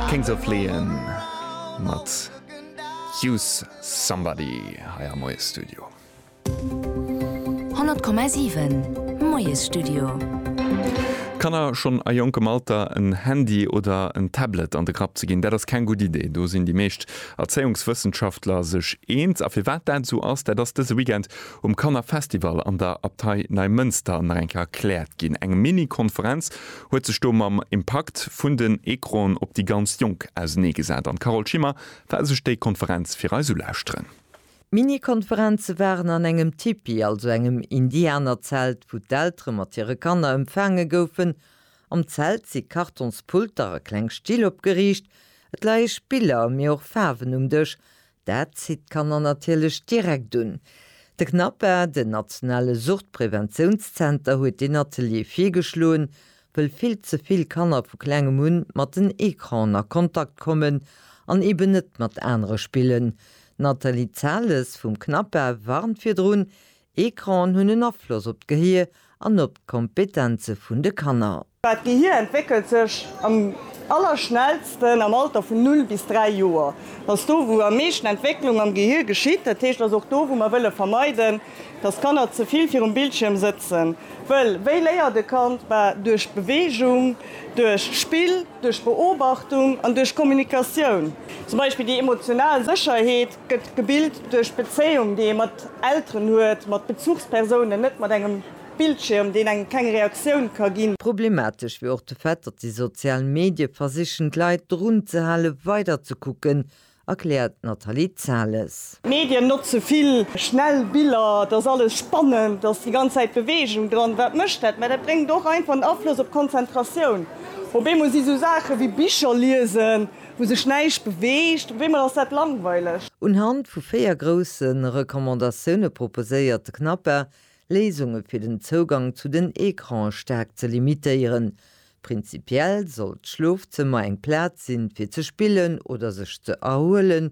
Kings of Leon mat Use Somebody hei am Moiesstudio. 100,7 Moiesstudio. Kanner schonn a jonkem Alter en Handy oder en Tablet an de Grapp ze ginn, dat ass keng gutt Idee. Do sinn déi meescht Erzéiungswëssenschaftler sech eens. A firwat dat esou ass, dat ass dëse Weekend um Kannerfestival an der Abtei Neimënster nach eng Kéier erkläert ginn. Eng Mini-Konferenz huet sech do mam Impakt vun den Ecranen op déi ganz Jonk ausenee gesat an d'Carole Schimmer war sech déi Konferenz fir eis ulauschteren. Mini-Konferenze waren an engem Tipi, also engem Indianerzelt, wou d'Eltere mat hire Kanner empfaange goufen. Am Zelt si Kartonspulter a kleng Still opgeriicht. Et leie Spiller, mee och Faarwen um Dësch. Dat zitt d'Kanner natierlech direkt un. De CNAPA, den nationale Suchtpräventiounszenter, huet deen Atelier virgeschloen, wëll vill ze vill Kanner vu klengem un mat den Ecranen a Kontakt kommen an eben net mat anere spillen. D'Nathalie Zales vum CNAPA warnt virdrun, Ecranen hunn en Afloss op d'Gehier an op d'Kompetenze vun de Kanner. D'Gehir entwéckelt sech am allerschnellsten am Alter vun 0 bis 3 Joer. Dat ass do, wou am meeschten Entwécklung am Gehir geschitt. Dat heescht, dat ass och do, wou mer wëlle vermeiden, dass d'Kanner ze vill virum Bildschierm sëtzen. Wëll wéi léiert e Kand? Bah, duerch Beweegung, duerch Spill, duerch Beobachtung an duerch Kommunikatioun. Zum Beispill déi emotional Sécherheet gëtt gebilt duerch d'Bezéiung, déi ee mat Elteren huet, mat Bezuchspersounen, net mat engem Bildschirm, deen engem keng Reaktioun ka gin. Problematesch wier och de Fait, datt déi sozial Medie versichen d'Leit drun ze hale weider ze kucken, erkläert d'Nathalie Zales. D'Medien notze vill schnell Biller, et ass alles spannend, et ass déi ganz Zäit Beweegung dran. Wat mécht dat? Mä dat bréngt och einfach en Afloss op d'Konzentratioun. Op eemol si sou Saache wéi Bicher liesen, wou sech näischt beweegt, op eemol ass dat langweileg. Unhand vu véier grousse Recommandatioune proposéiert de CNAPA, Léisunge fir den Zougang zu den Ecrane staark ze limitéieren. Prinzipiell soll d'Schlofzëmmer eng Plaz sinn, fir ze spillen oder sech ze erhuelen.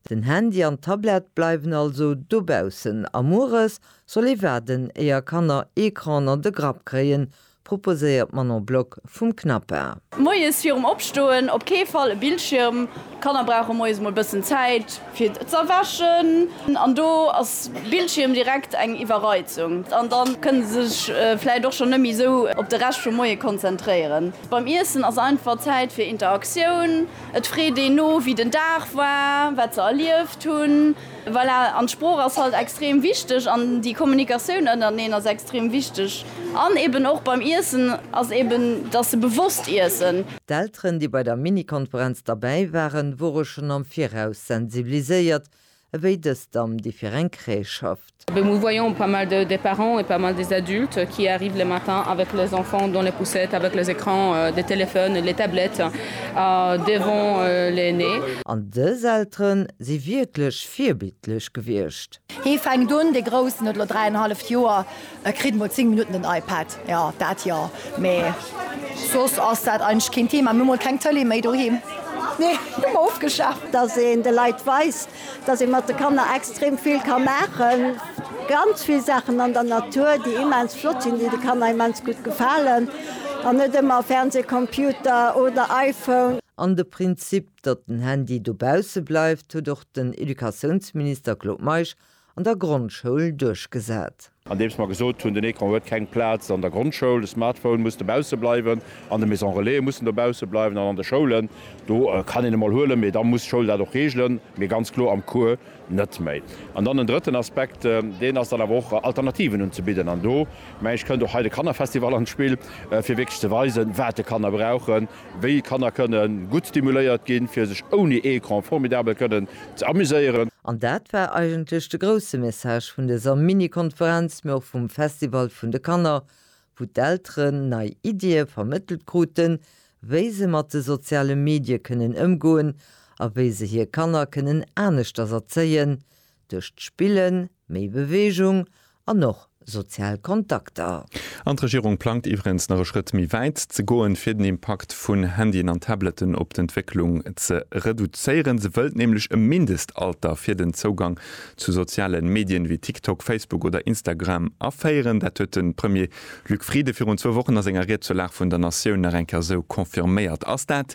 Den Handy an d'Tablett bleiwen also dobaussen a mueres soll ee waarden, éier Kanner Ecran an de Grapp kréien, proposéiert d'Manon Block vum CNAPA. Moies virum Opstoen op kee Fall e Bildschierm. D'Kanner brauche moies mol bëssen Zäit fir z'erwächen an do ass Bildschierm direkt eng Iwwerreizung an da kënne se sech vläit och schonn net méi esou op de Rescht vum Moie konzentréieren. Beim Iessen ass einfach Zäit fir Interaktioun. Et freet een no, wéi den Dag war, wat se erlieft hunn. Voilà, an d'Sprooch ass halt extrem wichteg an déi Kommunikatioun ënnerteneen ass extrem wichteg an eben och beim Iessen ass eben, dass se bewosst iessen. D'Elteren, déi bei der Mini-Konferenz derbäi waren, wore schonn am Viraus sensibiliséiert, ewéi dës Damm, déi fir eng Crèche schafft. Nous voyons pas mal de parents et pas mal des adultes qui arrivent le matin avec les enfants dans les poussettes avec les écrans des téléphones, les tablettes devant les nez. An dës Elteren, si wierklech virbildlech gewiescht. Hee fänkt un, dee Groussen huet elo dräienhalleft Joer, e kritt emol zéng Minutten den iPad, jo, dat jo, mee soss ass dat eigentlech keen Thema. Mir hu mol keng Tëlee méi doheem, nee, hu mer ofgeschaaft. Dass een de Leit weist, dass ee mat de Kanner extrem vill ka maachen, ganz vill Saachen an der Natur, déi immens flott sinn, déi de Kanner immens gutt gefalen, an net ëmmer Fernseh, Computer oder iPhone. An de Prinzip Datt den Handy dobausse bleift, huet och den Educatiounsminister Claude Meisch an der Grondschoul duerchgesat. Andeems mer gesot hunn, den Ecran huet keng Plaz an der Grondschoul, de Smartphone muss dobausse bleiwen, an de Maison Relaise mussen dobausse bleiwen an an de Schoulen, do kann een e mol huelen, mee da muss d'Schoul dat och regelen, mee ganz kloer am Cours net méi. An dann en drëtten Aspekt, deen ass dann awer och, Alternativen unzebidden. An do, meng ech, kënnt och hei de Kannerfestival an d'Spill, fir wierklech ze weisen, wat de Kanner brauchen, Wéi d'Kanner kënnen gutt stimuléiert ginn, fir sech ouni Ecran formidabel kënnen ze amuséieren. An dat war eigentlech de grousse Message vun dëser Mini-Konferenz, mee och vum Festival vun de Kanner, wou d'Elteren nei Iddie vermëttelt kruten, wéi se mat de soziale Medie kënnen ëmgoen a wéi se hir Kanner kënnen aneschters erzéien, Duerch d'Spillen méi Beweegung an och sozial Kontakter. An d'Regierung plangt iwwregens nach e Schrëtt méi wäit ze goen, fir den Impakt vun Handyen an Tabletten op d'Entwécklung ze reduzéieren. Se wëllt nämlech e Mindestalter fir den Zougang zu soziale Medien wéi TikTok, Facebook oder Instagram aféieren. Dat huet de Premier Luc Frieden virun zwou Wochen a senger Ried zur Lag vun der Natioun nach eng Kéier esou confirméiert. Ass dat